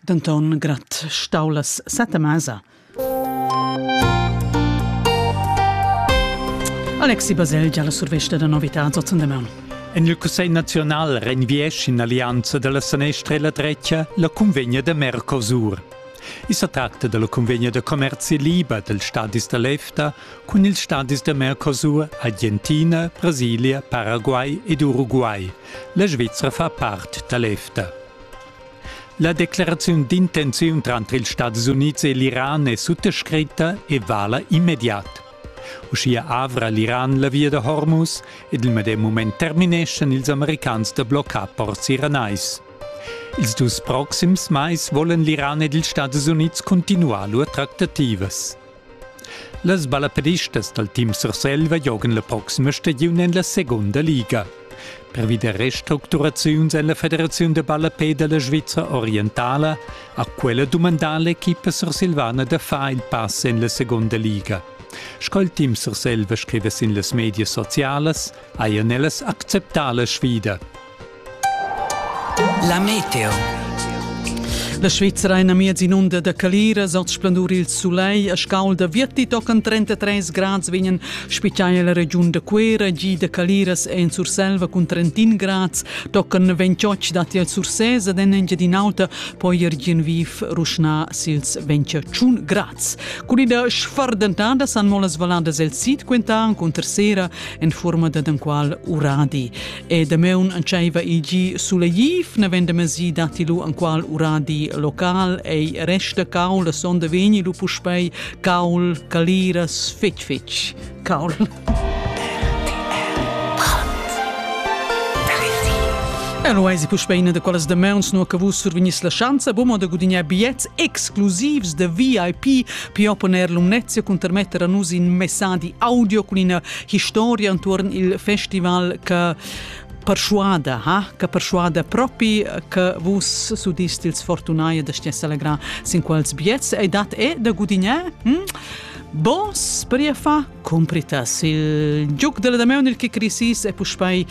Denton grad stau las sette mesa. Alexi Baselgia la survesta da novità zotzendeman. En il Cussegl nazional renviesch in allianza della sanestra e la drecia la convegna da Mercosur. I sa tracta della convegna da commerzi liber dels stadis da l'EFTA cun ils stadis da Mercosur, Argentina, Brasilia, Paraguay ed Uruguay. La Svizra fa part da l'EFTA. La decleraziun d'intenziun tranter ils Stats Unids e l'Iran è suttascritta e vala immediat. Uschia avra l'Iran la via da Hormuz ed il medem mument termineschan ils americans da bloccar ports iranais. Ils dus proxims mais vollen l'Iran ed ils Stats Unids cuntinuar lur tractativas. Las ballaperistas dal team Surselva giogan la proxima stagiun en la segunda liga. Pervi da restructuraziuns en la Federaziun da ballapè da la Svizra orientala ha quella dumandà l'equipa sursilvana da far il pass en la segunda liga. Sco il team Surselva scriva sin las medias socialas, hajan ellas acceptà la sfida. La Meteo. La Svizra è amiez inunda da caliras, oz splendur il sulei a scaulda virti tocan 33 grads vegnan spitgai la regiun da Cuera gi da caliras en Surselva cun 31 grads, tocan 28 dati a Sursés ad en Engiadin'Alta, poi ergien viv ruschna sils 21 grads. Con ida sfardentada san molas valadas el sid quentan con tercera en forma da qual uradi. E Dameun antscheiva igi sulegliv, navenda masi datti lu anqual uradi local, ei resta caul, la sonda vegni lu puspei caul, caliras, fetg fetg caul. Eloisi puspeina de quelles de meuns no che vus survignis la schanza bumo de gudignar biets exclusivs de VIP pi opponer lumnezia cun termetter a nus in messadi audio con ina historia entuorn il festival che perschuada, ha, che perschuada propi che vus sudist ils fortunai da stia selegrar sin quals biets e dat e da gudignar? Hm? Bos per fa compritas il giuc della Dameunil che crisis e puspei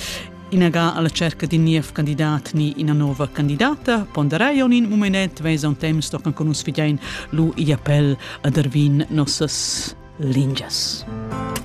inaga alla cerca di niev candidat ni ina nova candidata, ponderei on in momenet vesa un temps sto can conus fidein lu i appel ad Ervin nossas lingias.